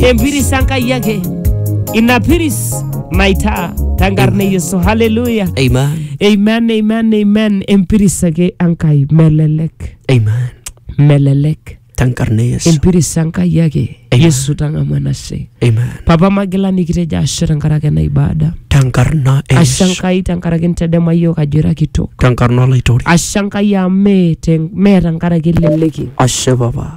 empiris enkai ake ina piris maitaa tenkarna e yesu haleluya Amen. amen amen amen empiris ake enkai melelek Amen. melelek Tenkarna e Yesu. empiris enkai ake Amen. yesu tang'amu enashe Amen. papa magila nikitejo ashe tenkaraki ena ibada Tenkarna e ashe Yesu. enkai tenkaraki ntedema yiok ajo ira kitok Tenkarna olaitori. ashe enkai amu mee te- mee tenkaraki eleleki Ashe papa.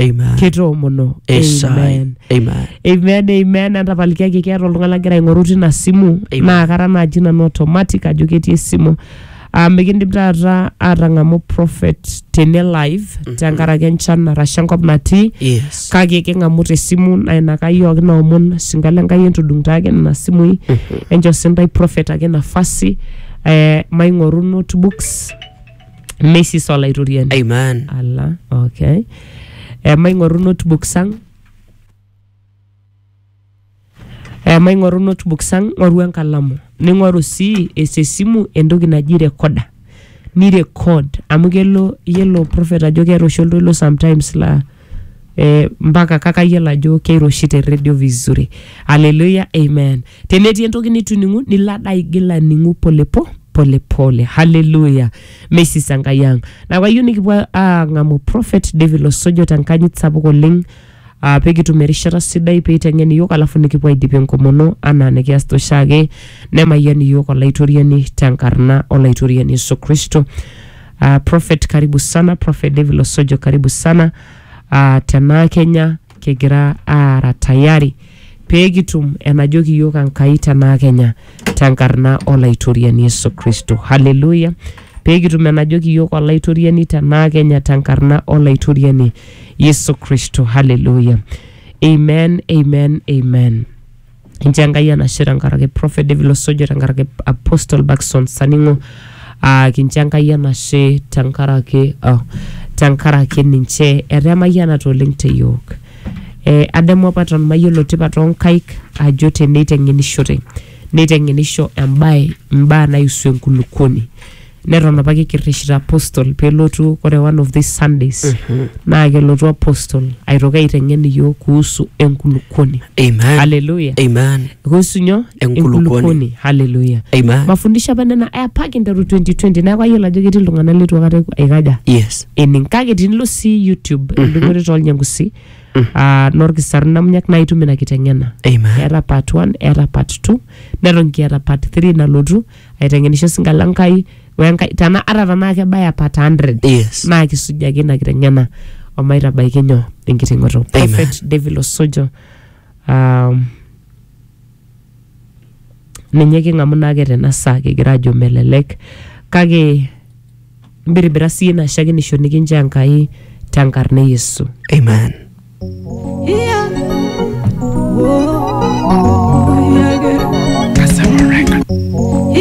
Amen. kitoomono Esai. amen Amen. amen amen entapalikiaki keeta oltung'ani lagira aing'oru tina simu Amen. naa kara naaji nanu automatic ajo ketii esimu Ah, mikindim taata atang'amu prophet tene live tenkaraki enchan arashu enkop natii Yes. kake king'amu tesimu naa ina kai yooki naomon sinkalo enkai entudung taake nena simui encho sintai prophet ake nafasi eh, maing'oru notebooks Mrs. Olaitoriani. Amen. Ala, okay. Emaing'oru notebooks ang. Emaing'oru notebooks ang, ng'oru enkalamu. Ning'oru sii ees esimu entoki naji recorder. Ni record amu kelo yiolo prophet ajo keeta oshi oltoilo sometimes laa eh, mpaka kake ayiolo ajo keiroshi te redio vizuri haleluya amen tenetii entoki nituning'u nilo ade aigil aning'u polepo polepole haleluya meisisa enkai ang neeku ayieu nikipuo aang'amu prophet david losojo tenkanyit sapuk oleng Uh, pekitum erishata sidai peiteng'en iyiok alafu nikipuo aidip enkomono anaa nikiasita oshiake nemayian iyiok olaitoriani tenkarna olaitoriani yesu kristo Uh, Prophet karibu sana, Prophet David Losojo karibu sana. Uh, tenaa Kenya kigira aara tayari pee kitum enajoki iyiook Enkai tenaa Kenya tenkarna Olaitoriani Yesu Kristo. Haleluya. Pee kitum enajoki iyiook Olaitoriani tenaa Kenya tenkarna Olaitoriani Yesu Kristo. Haleluya. Amen, amen, amen. inchoo enkai enashe tenkaraki prophet david losojo tenkaraki apostle bakson saning'o uh, kincho enkai enashe tenkaraki oh, tenkaraki ninche etaa emayianata oleng te yiok eh, adamu apa eton mayiolo tipat onkaik ajo teneiteng'enishote neiteng'enisho embae imbaa naiusu enkulukuoni neton apake kirrishita apostle pelotu ore one of these sundays naa kelotu apostle aitoki aiteng'en iyiok kuhusu enkulukuoni Amen. haleluya Amen. kuhusu nyoo Enkulukuoni. haleluya Amen. mafundisho apa nena apa kinteru 2020 neeku ayiolo ajo ketii iltung'anak litu akata aikaja Yes. ening kake tinilo sii youtube endung'ore tolnyangusi ah, norkisarun namunyak naa itum ina kiteng'ena Amen. eeta part 1 eeta part 2 neton kiata part 3 nalotu aiteng'enisho singa la Nkai wenkai tana ata tanaa kebaya part 100 Yes. naa kisujaki ina kiteng'ena omaitabaiki nyoo enkiting'oto prophet David Osojo um, ninye king'amu naake tena saa kigira ajo melelek kake mbiribira sii ina shakenisho nikinchoo Enkai tenkarna e Yesu Amen. Yeah.